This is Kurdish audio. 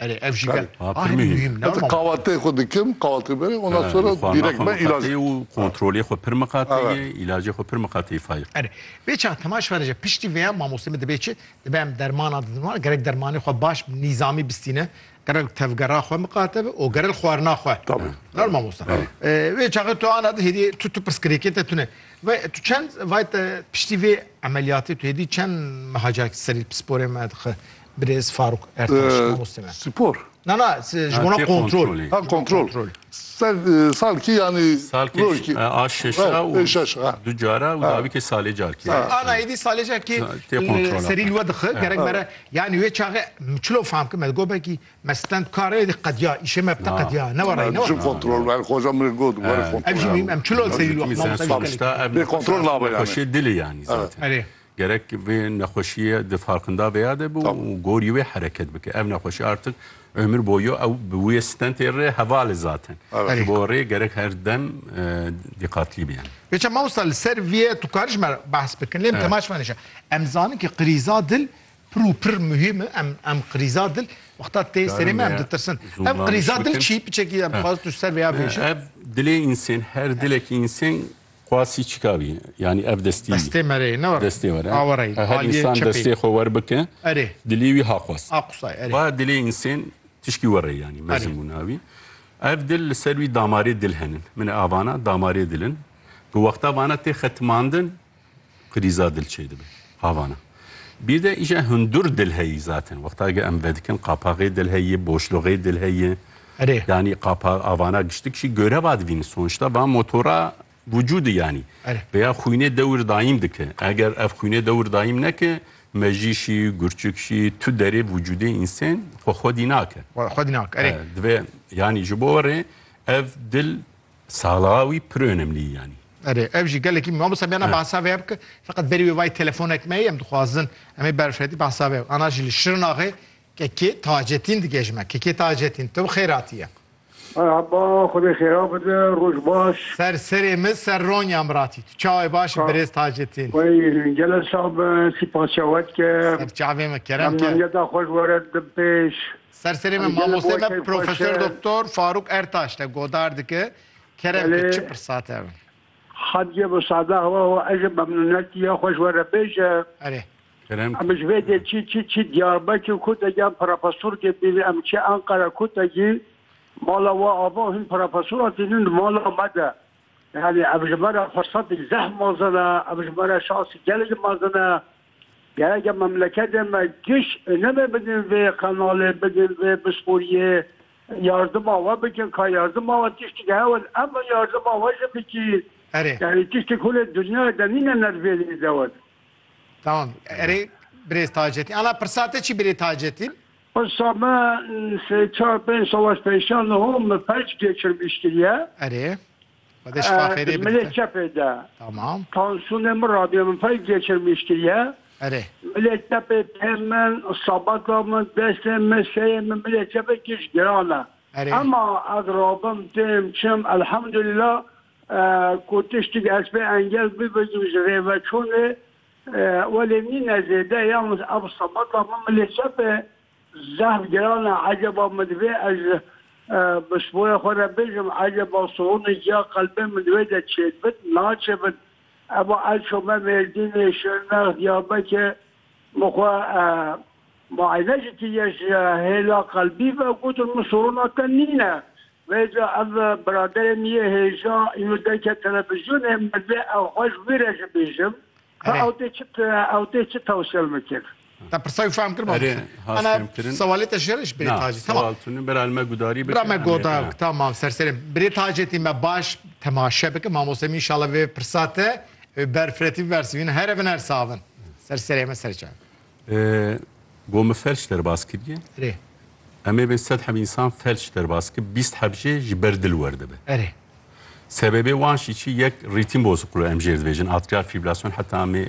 Erê ev jî Berê, ke ha, a pirmî hîn hîn. muhîm ne Heta ma. kahvaltiyê xwe dikim, kahvaltiyê berê, ondan He, sonra xwe direkt me ilaç. miqateyê û kontrolê xwe pir miqateyê, Evet. îlacê xwe pir miqateyê fayr. Erê vê çax Timaş Fereje piştî vêya mamostê min dibê çi? Dibe em dermanan didin wan gerek dermanê xwe baş bi nîzamî bistîne, gerek tevgera xwe miqate be û gerek xwarina xwe. Tabii. Nar mamosta. Tabii. Ee, Vê çaxê tu ana di hêdî tu tu pirsgirêkê te tune. Ve tu çend vay te piştî vê emeliyatê tu hêdî çend meha carek serî pisporê me dixi Birêz Faruk Ertaş mamoste me. Spor. Na na ji bona kontrol. Ha kontrol. Salkî yanî rojkî. A şeşa û du cara û davîkê salê carkî. Ana êdî salê carkî serî li we dixi gerek mere yanî wê çaxê min çilo fam kim me gobekî me stend kar êdî qediya îşê me bite qediya ne were ne were. Kontrol ver xoja min got were kontrol. Ev jî em çilo serî li we mamoste. Kontrol nabe yani. Dilê yani zaten. Gerek vê nexweşiyê di farqinda vêya de bi û gorî wê hereket bike. Ev nexweşî artik ömür boyu ew bi wê stentê re heval e zaten. Ji bo rê gerek her dem dîqatlî bî em. Pêça mamosta li ser vê tu karî ji me behs bikin lê em tema ji me nêşe. Em zanin ke qirîza dil pir û pir muhîm e. Em em qirîza dil wexta tê serê me em ditirsin. Ev qirîza dil çi? Piçekî em dixwazin tu ji ser vêya bêje. Ev dilê însen her dilekî însen Qasî çika bî? Yanî ev destî bî. Destê me rê ne were. Destê were. A were yî. Her însan destê xwe wer bike. Erê. Dilê wî ha xwest. Ha qusay erê. Ba dilê însên tişkî were yanî mezin bû navî. Ev dil li ser wî damarê dil henin. Min e avana damarê dil in. Bi wexta vana tê xetimandin. Krîza dil çê dibe. Havana. Bir de îşe hundur dil heyî zaten. Wexta ge em vedikin qapaxê dil heyî, boşluxê dil heyî. Erê. Yanî qapa avana giştik şî göre vadivîn. Sonuçta va motora vücudu yanî. Erê. Peya xwînê dewir dayîm dike. Eger ev xwînê dewir dayîm neke, mejî şî, gurçik şî, tu derê vücudê însen xwe xwedî nake. Xwedî nake. Erê. Divê yanî ji bo re ev dil Sala wî pir önemlî yanî. Erê ev jî gelekî mamosta bêna behsa vê ya bike feqet berî wê vayî telefonek me ye em dixwazin em ê berfedî behsa vê ana jî li Şirnaxê Kekê Tacetîn dige ji me. Kekê Tacetîn tu bi xêr hatiye. Merhaba xwedê xêra bide roj baş. Ser serê min ser Ronya min ra tî. Tu çawe baş î birêz Tacetîn. Wey gele sax be sîpas çawe dike. Ser çavê min kerem ke. Memnuniyeta xwe ji we re didim pêş. Ser serê me mamoste me Profesör Doktor Faruk Ertaş te godar dike. Kerem ki çi pirsa te ev. Hatice bi sada hewa ho ez ji memnûnetî ya xwe ji we re bêje. Erê. Kerem. Em ji vê dê çi çi çi Diyarbekir ku te giyan profesorkê bîne em çi Enqere ku te cî mala we ava hîn profesoran tînin di mala me de. Yanî ev ji me re firsatî zeh mezin e, ev ji me re şansî gelekî mezin e. Gerek e memleketê me giş nebe bidin vê qenalê, bidin vê pisporiyê, yardima we bikin, ka yardima we tiştîk hewl em bi yardima we jî bikîn. Erê. Yanî tiştîk hûn ê dinyayê de nîne nervênê de we de. Tamam. Erê birêz Taceddîn. Ala pirsa te çi birê Taceddîn? Pirsa me sê çar pênc sala pêşan ho min felç gêçirmiş kiriye. Erê. Di milê çepê de tansûnê min radiye min pey geçirmîştiye. Milê çepê pê min, sabata min, destê min, seyê min, milê çepê giş giran e. Ema ez rabim, têm, çim, elhamdulîla ku tiştî ez pê engel bibêjim ji rêveçûnê welê nîne zêde. Yalnîz ev sabata min milê çepê Zehf giran e eceba min divê ez bi spoya xwe re bêjim eceba siwonê ciya qelbê min divê de çêdibin naçêbin eba ez çome mêrdînê şirnex diyarbekê min xwe muayene ji kiriye ji hêla qelbî ve gotin min siwona te nîne vêca ev biraderê min yê hêja îno derke televizyonê min divê ew xwe ji wî re jibêjim. Erê. Ew tê çi te ew tê çi tewşel mikir? Te pirsa wî fehm kir Erê, mamoste? has Ana fêm kirin. sewalê te ji rêj birê Na, tacî. Tamam. sewal tune bira li me gudarî bike. Bira me em ê- goda ha. tamam serserê. Birê tacê tî me baş temaşe bike mamoste min înşallah vê pirsa te ber firetî bibersivînin here bin her savin. Serserê me serê çav. Gomi felç derbas kiriye. Rê. Em ê bên sed heb insan felç derbas ki bîst heb jê ji ber dil werdibe. Erê. Sebebê wan jî çi yek rîtîm bozuqlu em jê dibêjin atrial fibrilasyon heta em ê